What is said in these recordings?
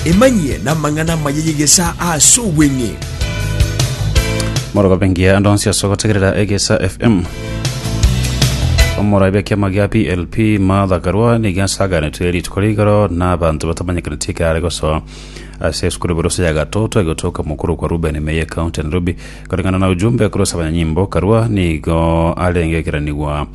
Emanyie n'amang'ana amaya y'egesaa ase obweng'e. Morogobe ngiya ande onsi ase ogotegerera egesa fm omoraibe kiama gia plp martha karua niga asaganetwe rituko rigoro na abanto batamanyekaneti ekare gosoa ase esukuru borose ya gatoto egotoka mokuru kwa ruben meye county nairobi koreng'ana na ujumbe korose abanyanyimbo karua nigo arenge ekeranigwa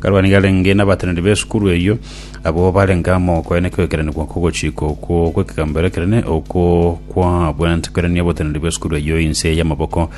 Karua nigo arenge nabateneneri b'esukuru eyio, abwo barenge amo koyia nekegekeranigwa kogochika okwo gw'ekegamberero ekenene, okwo kwabwate koirania oboteneneri bw'esukuru eyio inse y'amaboko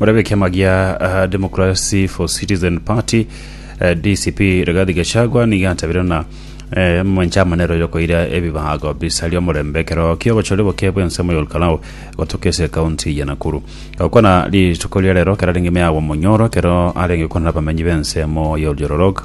Morabe ekiama gia Democracy for Citizen Party, DCP, Rigathi Gachagua nigo atabire ng'a omomanche amanero yokoira ebibago bisaria omorembe ekero ki'obochori oboke bw'ensemo y'Olkalau gotoka ase ekaunti ya Nakuru. Gokwana rituko ria rero kerarenge ime agwo omonyoro ekero arenge gokwana nabamenyi b'ensemo y'Olyororok.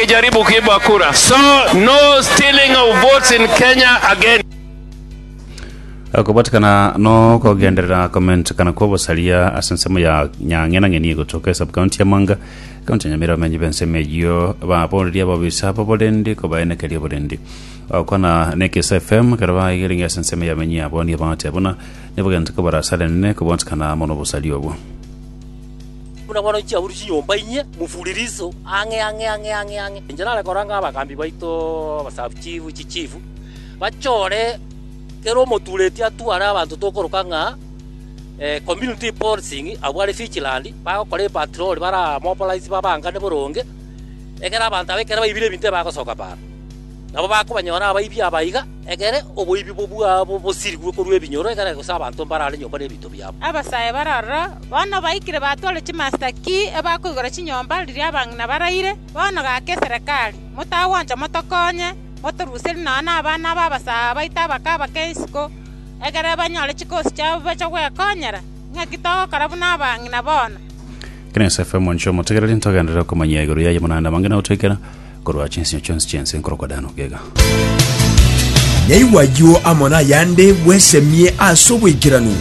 Jaribu kuiba kura. So no stealing of votes in Kenya again. Okobatikana nokogenderera komentekana kwa obosaria ase ensemo ya nyang'enang'eni egotoka esub county ya Mwanga, county ya Nyamira abamenyi b'ensemo eyio baboreria ababisa aba oborendi kobaenekeria oborendi. Ogokwana na Ekeso FM ekero baigirenge ase ensemo y'abamenyi abo nigo bagotea buna nigo bagenta kobarasa Lenene kobatikana amo nobosaria obwo. Buna bono inche aburwe chinyomba inyie, mufulilizo, ang'e, ang'e, ang'e, ang'e, ang'e. Inche nare koranga abagambi baito, abasaabchifu, chichifu, bachore kera omotureti atware abanto tokoroka ng'a eh, community policing abwo are vigilant, bagokora epatrol baramobilize babangane boronge, ekero abanto aba ekero baibire ebinto ebagosoka baano. Nabo bakobanyora abaibi aba iga, egere oboibi bwabo bosirigwe korwa ebinyoro, egere gose abanto mbarare nyomba nebinto biabo. Abasae bare aroro, bono baikire batware chimasita ki ebakoigora chinyomba riria abang'ina baraire. Bono gaka eserekari, motagwancha motokonye, motoruserie nonya nabana b'abasae abaito abakaba kera isiko, egere banyore chikosi chiabo bache gwekonyera. Naki togokora buna abang'ina bono. Kina Yosefu, omonchwa omotegereri, ntogenderere okomanyia igoro yaye, buna naende abang'ina gotoikera, Korwa chinsio chionsi chi'ense nkorokwa Dan ogega. Nyaigwe ayio amo nayande bwesemie ase obwaikeranu.